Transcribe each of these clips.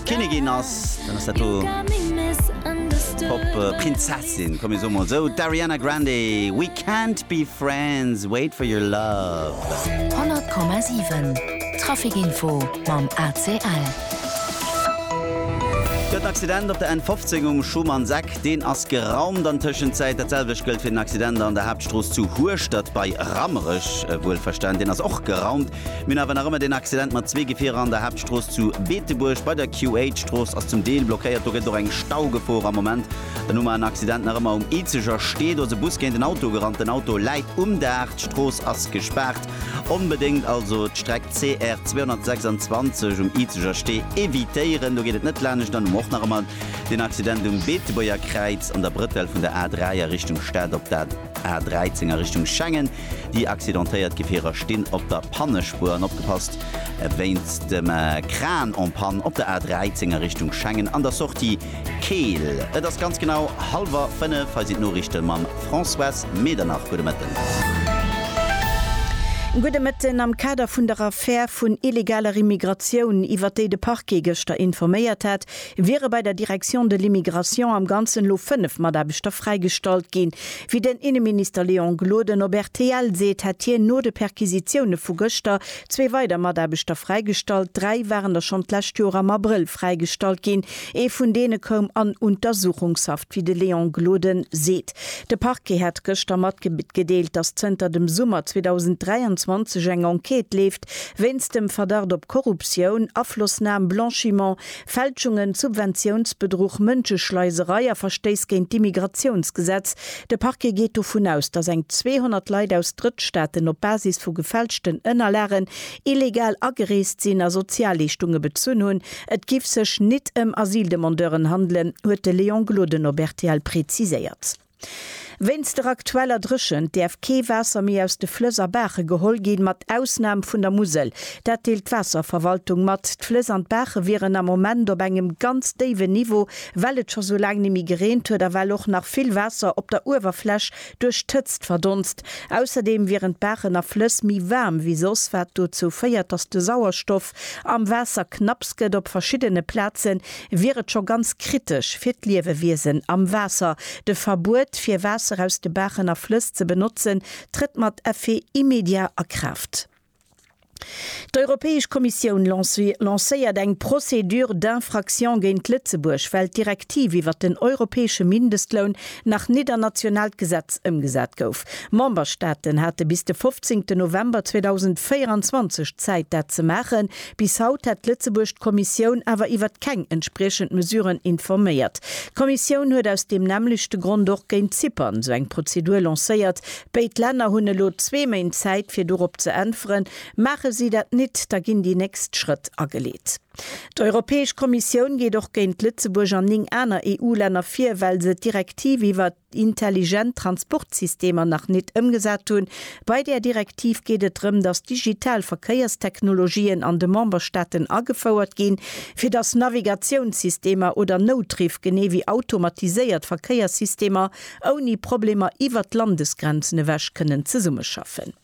Kinnigin ass, dann ass dat do d'Pop-Prinzessin, komm mir soe mol esou, d'Ariana Grande, We can't be friends, wait for your love. 100,7 Traficinfo mam ACL. Gëtt en Accident op der N15 um Schumannseck, deen ass geraumt an Tëschenzäit. Dat selwecht gëllt fir den Accident an der Haaptstrooss zu Hueschtert bei Rammerech, wuelverstan, deen ass och geraumt. Mir hunn awer nach ëmmer deen Accident mat zwee Gefierer an der Haaptstrooss zu Beetebuerg bei der QH-Strooss ass zum Deel blockéiert. Do gëtt och eng Staugefor am Moment. Dann hu mer en Accident nach ëmmer um Izeger Stee. Do ass e Bus géint en Auto gerannt. Den Auto läit um Daach. D'Strooss ass gespaart. Onbedéngt also d'Streck CR 226 um Izeger Stee evitéieren. Do geet et net laanescht. Dann hu mer och nach ëmmer den Accident um Beetebuerger Kräiz an der Brëttel vun der A3 a Richtung Stad op der A 13 a Richtung Schengen. Déi accidentéiert Gefierer stinn op der Pannespuer an opgepasst, wéinst dem Kran en panne op der A 13 a Richtung Schengen an der Sortie Keel. Et ass ganz genau hallwer 5, hei sinn d'Noriichte mam Françoise Medernach. Gudde Mëtten. Gudde Mëtten. Am Kader vun der Affär vun illegaler Immigratioun, iwwert déi de Parquet gëschter informéiert hat, wiere bei der Direction de l'Immigration am Ganzen elo 5 Mataarbechter fräigestallt ginn. Wéi den Inneminister Léon Gloden op rtl seet, hätt hien no de Perquisitioune vu gëschter zwee weider Mataarbechter fräigestallt. Dräi waren der schonn d'lescht Joer am Abrëll fräigestallt ginn. Ee vun deene koum an Untersuchungshaft, wéi de Léon Gloden seet. De Parquet hat gëschter matgedeelt, datt zënter dem Summer 2023 eng Enquête leeft wéinst dem Verdacht op Korruptioun, Aflossnam, Blanchiment, Fälschungen, Subventiounsbedruch, Mënscheschleiserei a Verstéiss géint d'Immigratiounsgesetz. De Parquet geet dovun aus, datt eng 200 Leit aus Drëttstaaten op Basis vu gefälschten Ënnerlagen illegal agereest sinn a Sozialleeschtunge bezunn hunn. Et giff sech nit ëm Asyldemandeuren handelen, huet de Léon Gloden op rtl preziséiert. Wéinst der aktueller Dréchent däerf kee Waasser méi aus de Flëss a Baache geholl ginn, mat Ausnam vun der Musel. Dat deelt d'Waasserverwaltung mat. D'Flëss an d'Baache wieren am Moment op engem ganz déiwen Niveau, well et scho sou laang ni méi gereent huet a well och nach vill Waasser op der Uewerfläch duerch d'Hëtzt verdonst. Ausserdeem wieren d'Baachen a Flëss méi waarm wéi soss, wat dozou féiert, datt de Sauerstoff, Fëscht am Waasser knapps gëtt op verschiddene Plaze wier et scho ganz kritesch fir d'Liewewiesen am Waasser. De Verbuet fir Waasser aus de Baachen a Flëss ze benotzen trëtt mat Effet immédiat a Kraaft. D'Europäesch Kommissioun lancéiert eng Procédure d'infraction géint Lëtzebuerg, well d'Direktiv iwwert den europäesche Mindestloun nach nit an nationaalt Gesetz ëmgesat gouf. Memberstaaten hate bis de 15 November 2024 Zäit dat ze maachen. Bis haut hätt Lëtzebuerg d'Kommissioun awer iwwert keng entspriechend Mesuren informéiert. D'Kommissioun huet aus deem nämmlechte Grond och géint Zypern esou eng Prozedur lancéiert. Béid Länner hunn elo zwee Méint Zäit fir dorop ze äntweren. Maache si dat nit, da ginn déi nächst Schrëtt ageleet. D'Europäesch Kommissioun geet och géint Lëtzebuerg an 9 aner EU-Länner vir, well se d'Direktiv iwwer intelligent Transportsystemer nach nit ëmgesat hunn. Bei där Direktiv geet et drëm, dass digital Verkéierstechnologien an de Memberstaaten agefouert ginn, fir dass Navigatiounssystemer oder Noutriff genee wéi automatiséiert Verkéierssystemer ouni Problemer iwwer d'Landesgrenzen ewech kënnen zesummeschaffen.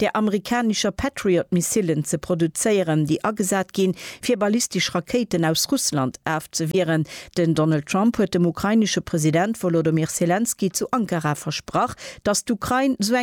der amerikanischer Patriot-Missilen ze produzéieren, déi agesat ginn, fir ballistesch Rakéiten aus Russland afzewieren. Den Donald Trump huet dem ukrainesche President Wolodomyr Selenskyj zu Ankara versprach, datt d'Ukrain esou